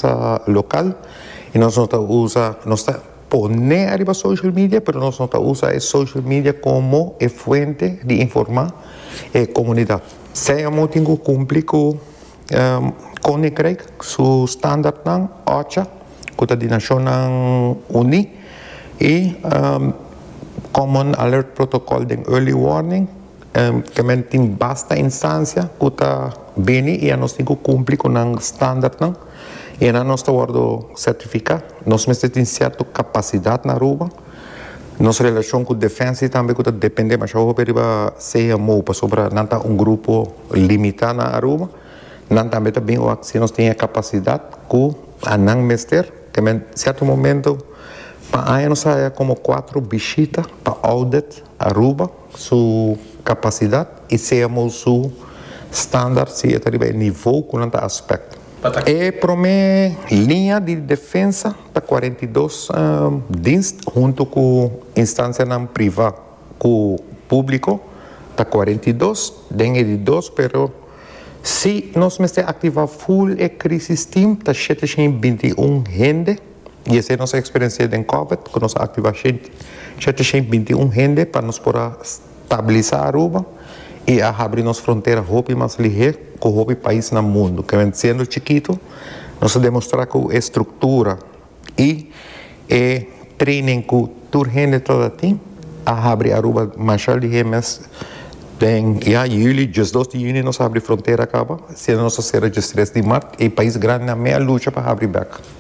ta local y nos no ta usa nos ta pone ariba social media pero nos no ta usa e social media como e fuente di informa e comunidad. Sea amo tin cu cumpli cu Koninkrijk su standaardnan oca cu ta di Nacionnan Uni y Common Alert Protocol den Early Warning. Te men tin basta instancia cu ta bini y anos tin cu cumpli cu nan standardnan y anan nos ta wordo certifica. Nos mester tin cierto capacidad na Aruba. Nos relacion cu Defensie tambe cu ta depende demasiado hopi riba CMO pasobra nan ta un grupo limita na Aruba. Nan tambe ta bin wak si nos tin e capacidad cu anan mester. Te men cierto momento pa aña nos a haya como cuatro bishita pa audit Aruba. Su capacidad y sea mos su standard si e ta riba e nivo cu nan ta aspect. E prome liña di defensa ta cuarenta y dos dienst hunto cu instancianan priva cu publico ta cuarenta y dos den e di dos pero si nos mester activa full e crisis team ta shete shin binti un hende. y esei nos a experiencia den Covid cu nos a activa shete shen binti un hende pa nos por a stabiliza Aruba y a habri nos frontera hopi mas lihe cu hopi pais na mundo kende siendo chikito nos a demostra cu e structura y e training cu tur hende ta ta tin a habri Aruba masha lihe mes den ya juli diesdos di juni nos a habri frontera caba siendo nos a cera diestres di mart y pais grandinan me a lucha pa habri bek.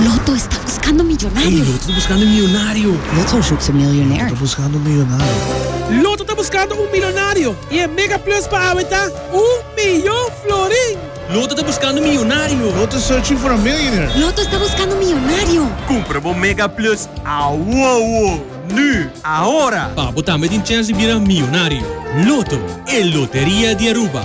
Loto esta buskando miyonario. Loto ta buskando un miyonario. Loto zoekt een miljonair. Loto ta buskando un miyonario. Loto ta buskando un milonario i e mega plus pa awe ta un miyon florin. Loto ta buskando un miyonario. Loto searching for a millionaire. Loto esta buskando un miyonario. Kumpra bo mega plus awowo, nu, ahora! Pa bo tambe tin chèns di bira miyonario. Loto, e loteria di Aruba.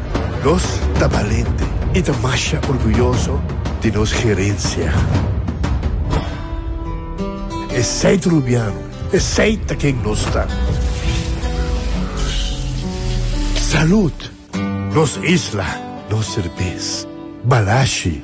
Nos ta balente i ta masha orguyoso di nos herensia. Esei Trubiano, esei ta ken nos ta. Salud! Nos isla, nos serbes. Balashi!